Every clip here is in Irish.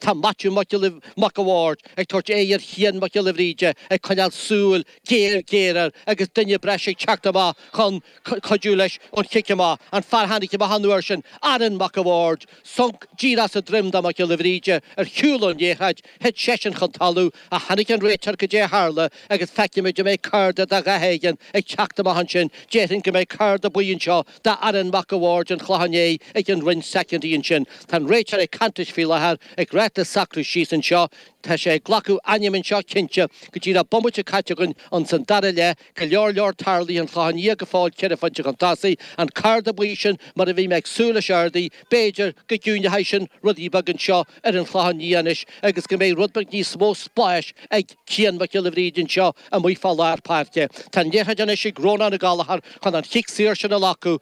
Tá Maitiú Mac Mac a' Bhaird ag tabhairt aird ar Chian Mac Giolla Bhríde ag coinneáil súil ghéar ghéar air agus duine breise ag teacht amach chun cuidiú leis an chic amach, an fear a tháinig amach an uair sin, Aaron Mac a' Bhaird. Sonc díreach sa droim do Mac Giolla Bhríde ar shiúl ón liathróid, thit seisean chun talamh ach tháinig an réiteoir caidé a tharla agus feicfimid an mbeidh cárta de dhath éigin ag teacht amach ansin, déarfainn go mbeidh cárta buí anseo, Do Aaron Mac a' Bhaird, den Chlochán Liath, ag an Roinn soicindí ansin. Tá an réiteoir ag caint leis faoi láthair, ag ráit leis socrú síos anseo. Tá sé ag glacadh ainm anseo, cinnte, agus trí bhomaite caite againn insan dara leath, go leor leor tarlaithe, an Chlochán Liath go fóill ceithre phointe chun tosaigh, an cárta buí sin, mar a bhí mé ag súil leis ardaithe, b'fhéidir, go gciúineoidh sin rudaí beag anseo ar an Chlochán Liath anois agus go mbeidh rud beag níos mó spáis ag Cian Mac Giolla Bhríde anseo amuigh fá lár páirce. Tá an liathróid anois ag Rónán Ó Gallachóir chun an chic saor sin a ghlacadh,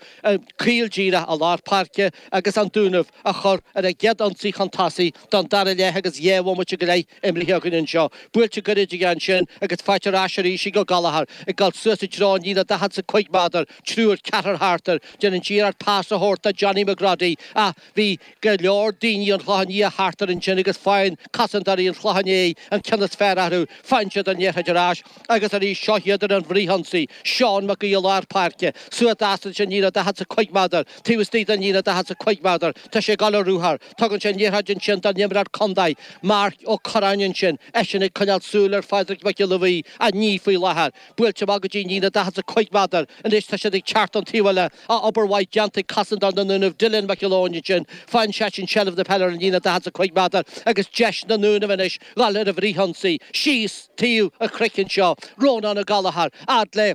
caol díreach i lár páirce agus An Dúnaibh a chur ar a gcéad ionsaí chun tosaigh don dara leath agus dhá bhomaite go leith imeartha againn anseo. Buailte goirid aige ansin agus faighte ar ais arís ag Ó Gallachóir. Ag dul suas i dtreo an líne daichead is a cúig méadar, triúr, ceathrar thart air. Déanann iarracht pas a thabhairt do Johnny McGroddy ach Bhí go leor daoine an Chlocháin Liath thart air ansin agus faigheann cosantóirí an Chlocháin Léith an ceann is fearr orthu. Faigheann siad an liathróid ar ais agus arís. Seo iad ar an bhfrithionsaí. Seán Mac Aodha lár páirce. Suas leis ansin líne daichead is a cúig méadar. Taobh istigh den líne daichead is a cúig méadar. Tá sé ag dul ar ruathar. Tugann sé an liathróid ansin don imreoir contae, Marc Ó Curráin ansin. Eisean ag coinneáil súil ar Phádraig Mac Giolla Bhuí inniu faoi láthair. Buailte amach go dtí an líne daichead is a cúig méadar. Anois tá siad ag teacht an taobh eile. Tá obair mhaith déanta ag cosantóir na nDúnaibh, Dylan McElwain ansin, faigheann seisean seilbh na peile ar an líne 45 méadar agus deis ag na Dúnaibh anois dhul ar an bhfrithionsaí, síos taobh an chnoic anseo, Rónán Ó Gallachóir, fhad le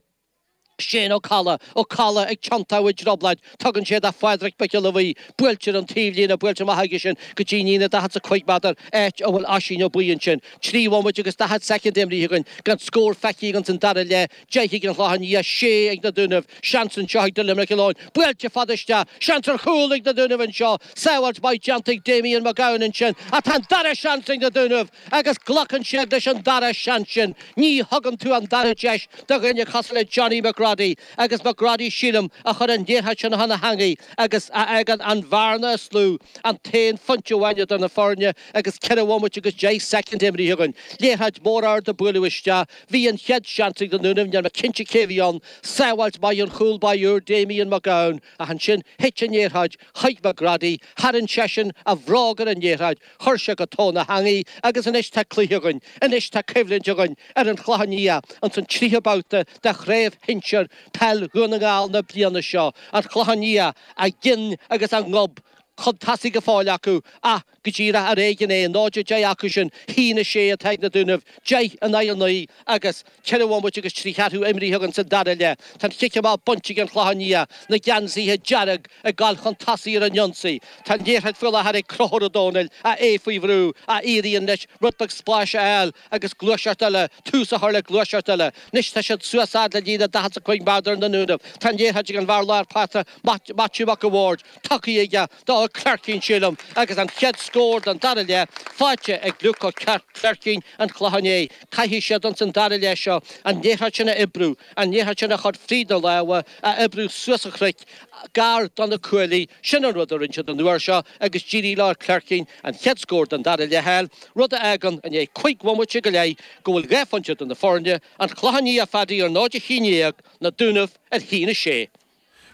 Shane Ó Cadhla, Ó Cadhla ag tiontadh i dtrioblóid, tugann sé do Phádraig Mac Giolla Bhuí, buailte ar an taobhlíne, buailte maith aige sin go dtí an líne 45 méadar, áit a bhfuil Oisín Ó Buí ansin. Trí bhomaite agus 40 soicind imrithe againn, gan scór feicthe againn san dara leath, 10 ag an Chlochán Liath 6 ag na Dúnaibh, seans anseo ag Dylan McElwain, buailte fada isteach, seans ar chúl ag na Dúnaibh anseo, sábháilt maith déanta ag Damien Mac Gabhann ansin ach tá an dara seans ag na Dúnaibh agus glacann siad leis an dara seans sin, ní thugann tú an dara deis do dhuine cosúil le Johnny McGroddy agus McGroddy sílim a chuir an liathróid sin chun na heangaí agus fágann an bhearna is lú, an t-aon phointe amháin idir na foirne agus ceithre bhomaite agus deich soicind imrithe againn, liathróid mhór ard a buaileadh isteach. Bhí an chéad seans ag na Dúnaibh, níl mé cinnte cé a bhí ann, sábháilt maith ón chúl báire úr Damien Mac Gabhann ach ansin thit an liathróid chuig McGroddy, tharraing seisean a bhróg ar an liathróid, chuir sé go tóin na heangaí agus anois tá cluiche againn, anois tá coimhlint againn ar an Chlochán Liath ins an tríú babhta de Chraobh Shinsir Peil Dhún na nGall na bliana seo, an Chlochán Liath a gcinn agus a ngob chun tosaigh go fóill acu ach go díreach ar éigin é, 0 10 acu sin 1 6 atá ag Na Dúnaibh, 10 in aghaidh 9 agus ceithre bhomaite agus trí cheathrú imrithe againn sa dara leath. Tá an chic amach bainte ag an Chlochán Liath na geansaithe dearg ag goil chun tosaigh ar an ionsaí. Tá an liathróid faoi láthair ag Conchúr Ó Domhnaill, ach é faoi bhrú, ach éiríonn leis rud beag spáis a fháil agus gluaiseacht eile, tús a chur le gluaiseacht eile. Anois tá siad suas a fhad le líne 40 is a 5 méadar na nDúnaibh. Tá an liathróid ag an bhfear lár páirce, Maitiú Mac an Bhaird, tacaí aige do Ó Cléircín sílim agus an chéad scór den dara leath faighte ag Luke Ó Cléircín an Chlocháin Léith. Caithfidh siad ins an dara leath seo an liathróid sin a oibriú, an liathróid sin a chur fríd na lámha, a oibriú suas an chnoic, gar do na cuaillí. Sin an rud a rinne siad an uair seo agus d'éirigh le Ó Cléircín an chéad scór den dara leath a fháil, rud a fhágann, i ndiaidh cúig bhomaite go leith, go bhfuil dhá phointe idir na foirne, An Clochán Liath ar 0:11, Na Dúnaibh ar 1:06.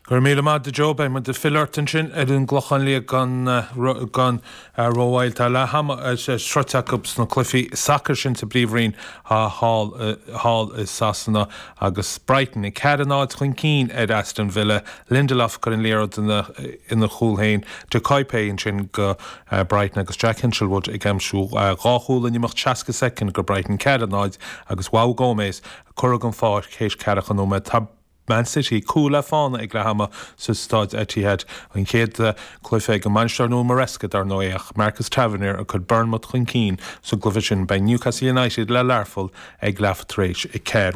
Go raibh míle maith agat Joe, beidh muid ag filleadh ort ansin ar an gClochán Liath gan rómhoill. Tá leath ama sroite acu sna cluichí sacair sin sa bPríomhroinn thall i Sasana agus Brighton 4-0 chun cinn ar Aston Villa. Lindelof ag cur an liathróid ina chúl féin, De Cuyper ansin go Brighton agus Jack Hinshelwood ag aimsiú dhá chúl in imeacht 60 soicind go Brighton, 4-0 agus Joao Gomes curtha den pháirc théis ceathracha nóiméad. Man City, cúl le fána ag leath ama sa Staid Etihad. An chéad cluiche ag an mbainisteoir nua Maresca, dar ndóigh, ach Marcus Tavernier a chuir Bournemouth chun cinn sa gcluiche sin. Beidh Newcastle United le Learpholl ag leath tar éis a ceathair.